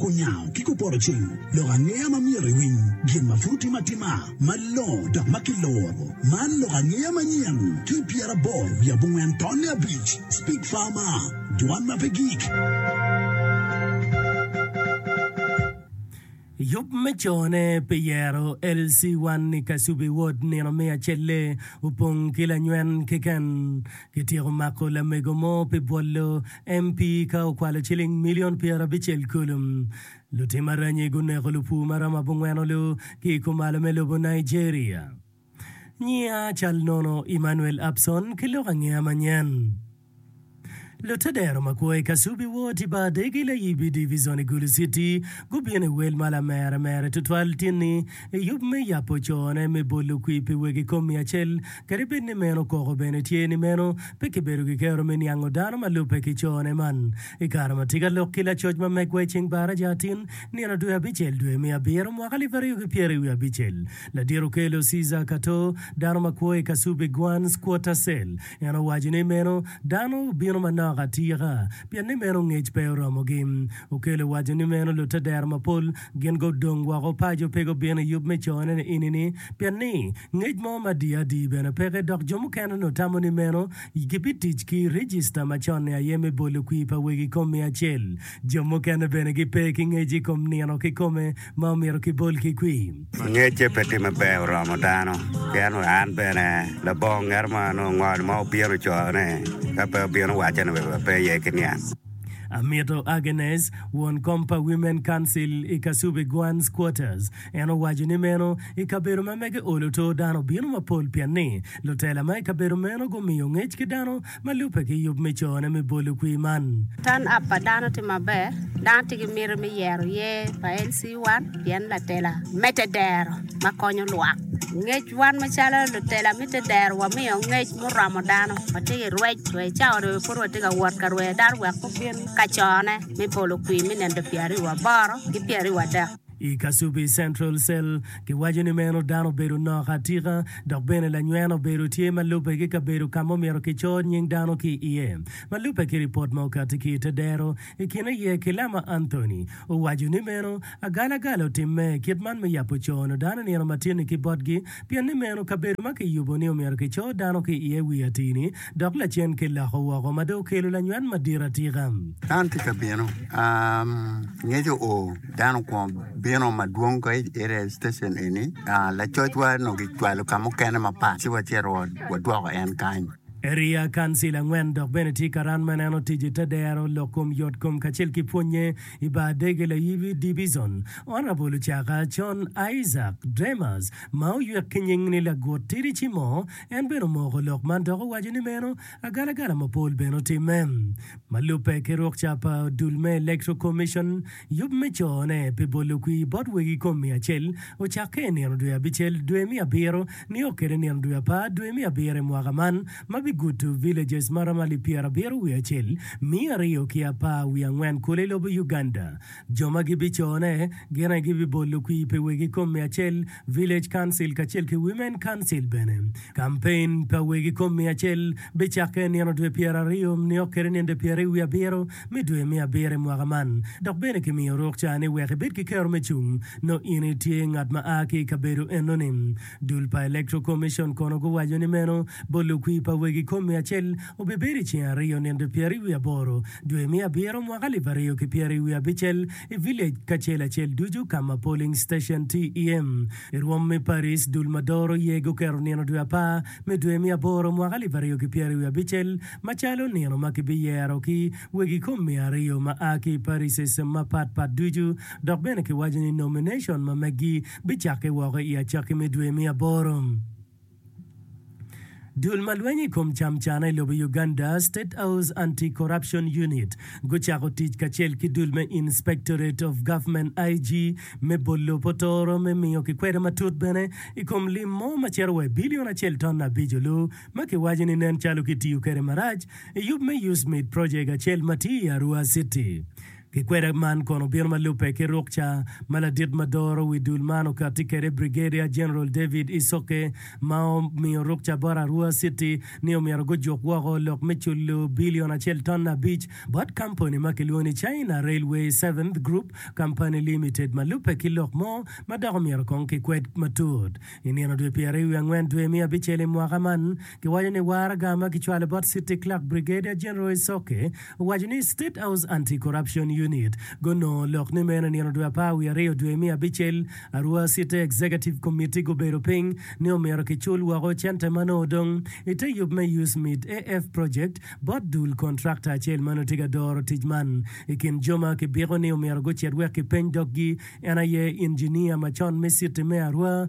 Kunyango ki kupoto cing lok angeya ma myero iwiny gin ma pud otime atima malongo dok ma kiloro. Man lok angeya manyen ki i pyeraboro wiye abongwen tonne abic. Speak Farmer, Dwan ma pe gik. I yub me cone pi yero, LC1 i Kasubi Ward nino me acel-le opong ki lanywen keken. Kityeko mako lamego mo pi bwolo MP ka okwalo ciling milion pyerabicel kulu. Lutim aranyi guneko lupur ma romo abongweno-lu ki i kumalo me lobo Nigeria. Nyinga cal nono Emmanuel Abson ki lok angeya manyen. Lutedero ma kwo i Kasubi Ward i Badegi Layibi Divizon i Gulu City gubino i wel ma lamere mere tutwal tinni i yub me yabo cone me bolo kwir pi wegi kom miya acel Kadi bed ni meno koko bene tye ni meno pe kibedo ki kero me niango dano ma lubbe ki cone man. I kare ma tika lok ki lacoc ma megwa i ceng baraja atin nino dwe abicel dwe me abiro mwaka alip aryo ki pyeri wiye abicel, ladit okelo Cesar Cato, dano ma kwo i Kasubi Guan's Quarter Cell. En owaco ni meno dano obino manok atika pien ni meno ngec pe oromogi. Okelo owaco ni meno lutadero mapol Gin gudong woko paco pe gubino i yub me cone ni ini-ni, pien ni ngec mo ma di adi bene peke, dok jo mukene onongo tamo ni meno. Gibitic ki i rijista macon-ni aye me bolo kwir pa wegi i kom miya acel. Jo mukene bene gipe ki ngec i kom nino kikome ma omyero kibol ki kwir. Ngecce pe tye maber oromo dano, pien wa an bene labongo ngeto mo onongo ngol mo obino cone, ka pe obino wacce ni wek wape iye ki niang. Amito Agnes, won kom pa Women Council i Kasubi Guan's Quarters, en owaco ni meno i kabedo ma mege olo to dano bino mapol pien ni lutela ma i kabedo meno gumiyo ngec ki dano ma lubbe ki yub me cone me bolo kwir man. Turn up pa dano tye maber. Dano tye ki miti me yero yer pa LC1 pien latela mete dero. ma konyo lwak. Ngec, Wan macalo lutela mitte dero wamiyo ngec muromo dano. Watye ki rwec wa i cawa dwe pud watye ka wot ka rweyo dano wek gubin ka cone me polo kwir me nino pyeraryo aboro ki pyeraryo adek. I Kasubi Central Cell, giwaco ni meno dano obedo nok atika dok bene lanyweno obedo tye ma lubbe ki kabedo ka ma omyero kicor nying dano ki iye. Ma lubbe ki ripot ma okati ki i te dero, I kin aye ki lama Anthony owaco ni meno agalagala otimme, kit man me yabo cono dano nino matinni ki botgi, pien ni meno kabedo ma kiyubo ni omyero kico dano ki iye wi atini dok lacen ki loko woko ma dong okelo lanywat madit atika. Dano tye ka bino, ngec oo, dano okwongo bino madwong ka ite i citecen eni, lacocwa onongo kicwalo ka mukene mapat ci wacito wadwoko en kany. Eriya, Kansil angwen, dok bene tye ka ran ma neno ticce te dero lok kom yot kom kacel ki pwonnye i bar dege layibi Dibizon. Honorable Ocaka, Con Isaac Dremas, ma oyuek ki nying ni Lagut Tidi Cimo, en bene omoko lok man dok owaco ni meno agalagala mapol bene otimme. Ma lubbe ki rukca pa odul me Electoral Commission, Yub me cone pi bolo kwir bot wegi kom miya acel ocakke i nino dwe abicel, dwe me abiro, nio kede nino dwe apar, dwe me abiro i mwaka man, ma bigudo villages ma romo alip pyera abiro wiye acel, miya aryo ki apar wiye angwen kulu i lobo Uganda. Jo ma gibicone gin aye gibibolo kwir pi wegi kom miya acel, Village Council kacel ki Women Council bene. Kampein pa wegi kom miya acel bicakke i nino dwe pyeraryo nio kede ninde pyeraryo wiye abiro me dwe me abiro i mwaka man, dok bene kimiyo ruk ca ni wek ibed ki kero me cung nongo in itye ngat ma a ki i kabedo enoni. Dul pa Electoral Commission kono guwaco ni meno bot lukwi pa wegi kom miya acel obibedo i ceng aryo ninde pyeraryo wiye aboro dwe me abiro mwaka alip aryo ki pyeraryo wiye abicel, i village kacel acel ducu ka ma polling station tye iye. I rwom me Paris, dul ma doro iye guketo nino dwe apar me dwe me aboro mwaka alip aryo ki pyeri wiye abicel macalo nino ma kibiyero ki wegi kom miya aryo ma a ki i parises mapat pat ducu dok bene kiwaco ni nomination ma meggi bicakke woko i acakki me dwe me aboro. Dul ma lwenyo i kom camcana i lobo Uganda, State House Anti-Corruption Unit, gucako tic kacel ki dul me Inspectorate of Government, IG, me bolo potoro me miyo kikwede matut bene i kom lim mo ma cito wa i bilion acel ton abico lu ma kiwaco ni nen calo kitiyo kwede marac i yub me Use Meat Project acel ma tye i Arua City. Kikweda man kono obino ma lubbe ki ruk ca ma ladit ma doro wi dul man okatti kwede Brigadier General David Isoke ma omiyo ruk ca bot Arua City ni omyero gujuk woko lok me culo bilion acel ton abic bot kampani ma kilwongo ni China Railway Seventh Group Company Limited ma lubbe ki lok mo ma dok omyero kong kikwed matut i nino dwe pyeraryo wi angwen dwe me abicel i mwaka man. Giwaco ni waraga ma kicwalo bot City Clerk Brigadier General Isoke owaco ni State House Anti Corruption Unit gunongo lok ni meno i nino dwe apar wiye aryo dwe me abicel arwa City Executive Committee gubedo piny ni omyero kicul woko cente ma nongo odong i te yub me USMID AF project bot dul contractor acel ma nongo tye ka doro tic man. I kin jo ma kibiko ni omyero gucit wek kipeny doggi en aye Engineer macon me City me Arua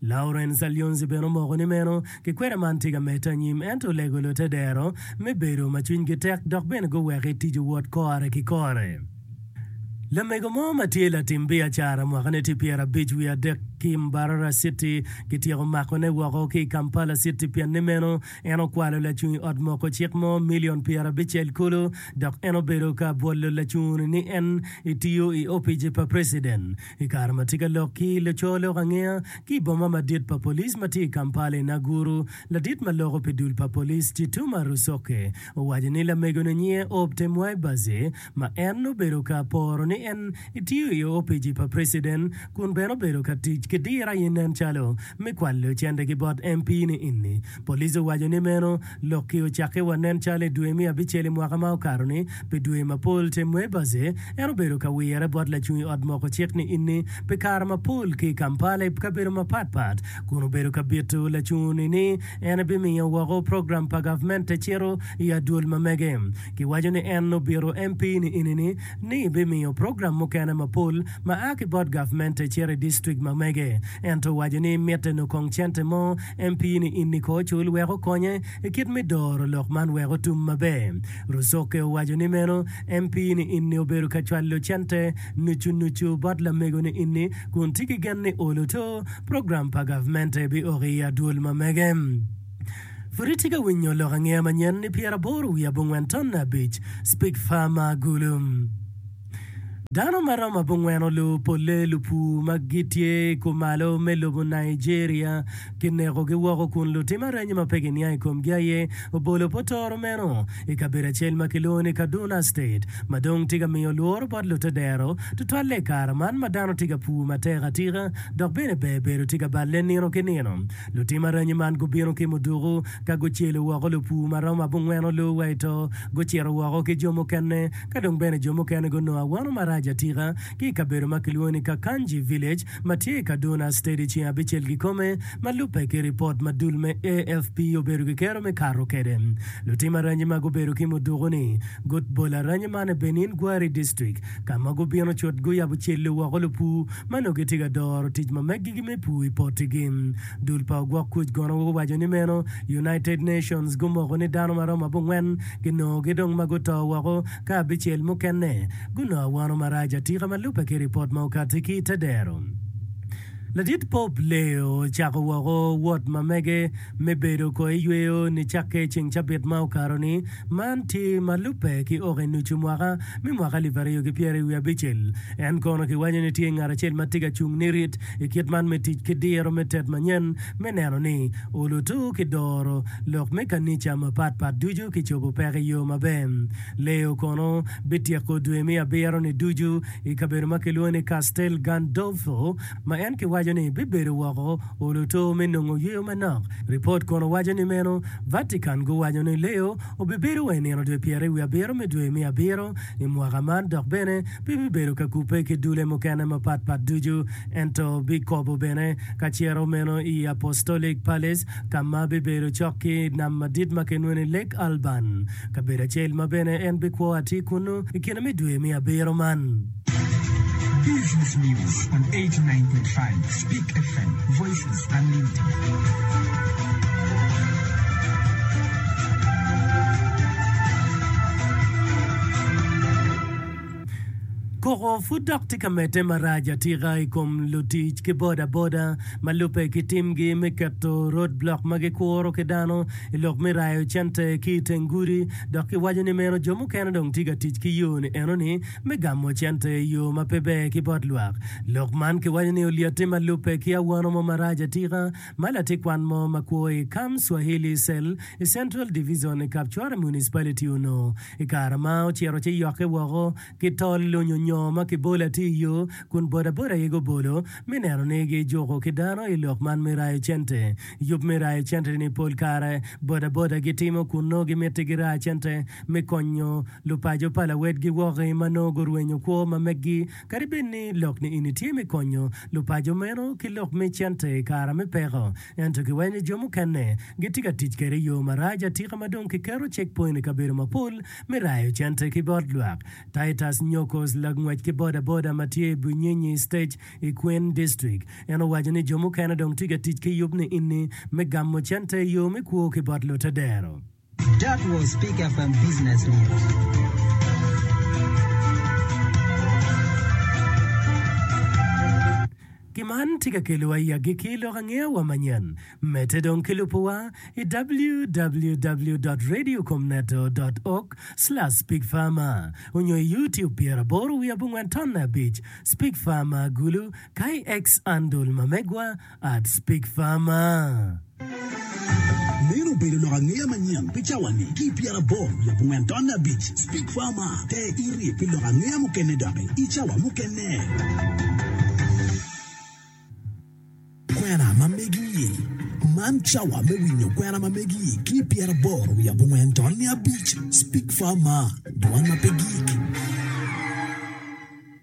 Laurence Alionzi bene omoko ni meno kikwena man tye ka medde anyim ento olego lute dero me bedo ma cwinygi tek dok bene guweko i tic owot kore ki kore. Lamego mo ma tye latim biacara mwakane tye pyera abic wiye adek ki i Mbarara City kityeko makone woko ki i Kampala City pien ni meno en okwalo lacung i ot moko cik mo milion pyera abicel kulu dok en obedo ka bwolo lacunguni ni en etiyo i opici pa preciden I kare ma tye ka lok ki i laco lok angeya ki i boma madit pa police ma tye i Kampala i Naguru, ladit ma loko pi dul pa police Chituma Rusoke owaco ni lamegone nyinge Obte Mwaibaze ma en obedo ka poro ni en etiyo i opici pa president kun bene obedo ka tic ki diro aye nen calo me kwalo cente ki bot MP ni ini. Police owaco ni meno Lok-ki ocakke wa nen calo i dwe me abicel i mwaka ma okato-ni, pi dwe mapol te Mwebazhe, en obedo ka wirre bot lacung i Ot Moko Cik ni Inni pi kare mapol ki i Kampala i kabedo mapatpat, kun obedo ka bito lacungu-ni ni en ebimiyo woko program pa gavment te cito i adwol ma mege. Kiwaco ni en obito MP ni Inni-ni ni ebimiyo program mukene mapol ma a ki bot gavment te cito i distrik ma mege, ento owaco ni mitte nokong cente mo En pii ni in niko ocul wek okonye i kit me doro lok man wek otum maber. Rusoke owaco ni meno en pii ni in ni obedo ka cwalo cente nucu nucu bot lamego ni in ni kun tye ki gen ni olo to program pa gavmente bi oko i adwol ma mege. Pud itye ka winyo lok angeya manyen ni pyeraboro wiye abongwen tonne abic, Speak Farmer Gulu. Dano ma romo abongwen olor polle lupur ma gitye i kumalo me lobo Nigeria kinekogi woko kun lutim arenyo ma pe giniang i komgi aye obolo potoro meno i kabedo acel ma kilwongo ni Kaduna State ma dong tye ka miyo lworo bot lute dero tutwalle i kare man ma dano tye ka pur matek atika dok bene ber bedo tye ka balle nino ki nino. Lutim arenyo man gubino ki muduku ka gucelo woko lupur ma romo abongwen olor wa i to gucito woko ki jo mukene Ka dong bene jo mukene gunongo awano marac atika ki i kabedo ma kilwongo ni Kakanji Village ma tye i Kaduna State i ceng abicel kikome, ma lubbe ki ripot ma dul me AFP obedo ki kero me kato kwede. Lutim aranyi ma gubedo ki muduku ni gut bol aranyi man i Benin Gwari District ka ma gubino cut guyabo celli woko lupu ma nongo gitye ka doro tic ma meggigi me pur i pottigi. Dul pa ogwok kuc gono guwaco ni meno United Nations gumoko ni dano ma romo abongwen ginongogi dong ma guto woko ka abicel mukene gunongo awano marac atika ma lubbe ki ripot ma okati ki ite dero. Ladit Pope Leo ocako woko wot ma mege me bedo ko i yweyo nicakke i ceng cabit ma okato ni, man tye ma lubbe ki oko i nucu mwaka me mwaka alip aryo ki pyeraryo wiye abicel. En kono kiwaco ni tye ngat acel ma tye ka cung nirit I kit man me tic ki diro me tet manyen me neno ni olutu ki doro lok me kanica mapat pat ducu ki cobo peko i yo maber. Leo kono bityeko dwe me abiro-ni ducu i kabedo ma kilwongo ni Castel Gandolfo, ma en kiwaco ni bibedo woko olutu me nongo yweyo manok. Ripot kono waco ni meno Vatican guwaco ni Leo Obibedo wa i nino dwe pyeri wi abiro me dwe me abiro i mwaka man dok bene pe bibedo ka kubbe ki dulle mukene mapat pat ducu, ento bikobo bene ka ciro meno i Apostolic Palace ka ma bibedo cok ki i nam madit ma kinweno ni Lake Alban, kabedo acel ma bene en bikwo atir kunnu i kine me dwe me abiro man. Koko pud dok tye ka medde marac atika i kom lutic ki boda boda ma lubbe ki timgi me keto road block ma gikuro ki dano i lok me rayo cente ki i teng gudi dok kiwaco ni meno jo mukene dong tye ka tic ki yo-ni enoni Me gamo cente i yo ma pe ber ki bot lwak. Lok man kiwaco ni olyette ma lubbe ki awano mo marac atika ma latikwan mo ma kwo i Kam Swahili Cell i Central Division i Kapchwara Municipality onongo i kare ma ocito ci yokke woko ki tol lunyo nyo ma kibolo atir i yo kun bodaboda aye gubolo me neno ni gijuko ki dano i lok man me rayo cente. Yub me rayo cente-ni pol kare bodaboda gitimo kun nongo gimiti giraa cente me konyo Lupaco pa lawedgi wok-ki ma nongo gurwenyo kwo ma meggi, kadi bed ni lok niini tye me konyo lupaco meno ki lok me cente i kare me peko, ento kiwenyo jo mukene gitye ka tic kwede i yo marac atika ma dong kiketo checkpoint i kabedo mapol me rayo cente ki bot lwak. Titus Nyokos, langwec ki bodaboda ma tye i Bunyinyi Stage i Kween District, en owaco ni jo mukene dong tye ka tic ki yub niini me gamo cente i yo me kwo ki bot lutedero. That was Pick FM Business News. Ki man tye ka kelowa i agikki lok angeya wa manyen. Medde dong ki lubo wa i www.radiocomneto.org/speakfarmer onyo i YouTube pyer aboro wiye abongwen tonne abic, Speak Farmer, Gulu, ka i X andol ma megwa I'd speak farmer. Meno obedo lok angeya manyen pi cawani ki i pyeraboro wiye abongwen tonne abic. Speak Farmer, Te iri pi lok angeya mukene doki i cawa mukene. Kwena ma megi i Man cawa me winyo kwena ma megi ki i pyeraboro wiye abongwen tonne abic. Speak Farmer, Dwan ma pe gik.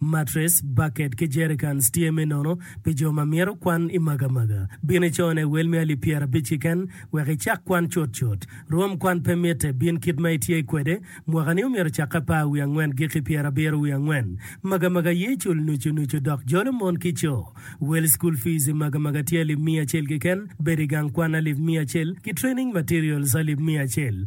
Matres, baket ki jerikans tye me nono pi jo ma myero kwan i magamaga. Bin i cone wel me alip pyerabic keken wek icak kwan cutcut. Rwom kwan pe mitte, bin kit ma itye kwede. Mwakani omyero ocakke apar wiye angwen giki pyerabiro wiye angwen. Magamaga ye cul nucu nucu dok jolo mon ki co. Wel school fees i magamaga tye alip miya acel keken, bedo i gang kwan alip miya acel, ki training materials alip miya acel.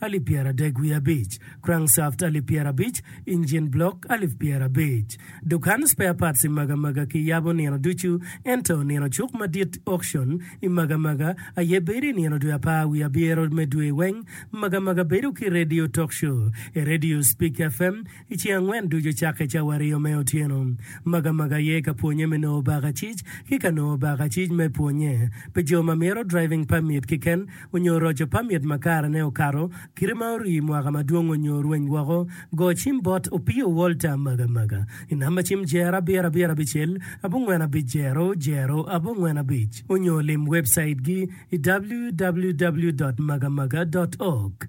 alip pyeradek wiye abic, crankshaft alip pyerabic, engine block alip pyerabic. Dukan spare parts i Magamaga kiyabo nino ducu, ento nino cuk madit, auction, i Magamaga aye bedo i nino dwe apar wiye abyero me dwe weng. Magamaga bedo ki radio talk show, e radio Speak FM, I ceng angwen ducu cakke cawa aryo me otyeno, Magamaga aye ka pwonye me nongo bakacic ki ka nongo bakacic me pwonye pi jo ma mito driving permit kiken onyo roco permit ma karene okato kite ma orii mwaka madwong onyo orweny woko. Go cim bot Opio Walter Magamaga i namba cim jer abiro abiro abicel abongwen abic jero jero abongwen abic onyo lim webcaitgi i www.magamaga.org.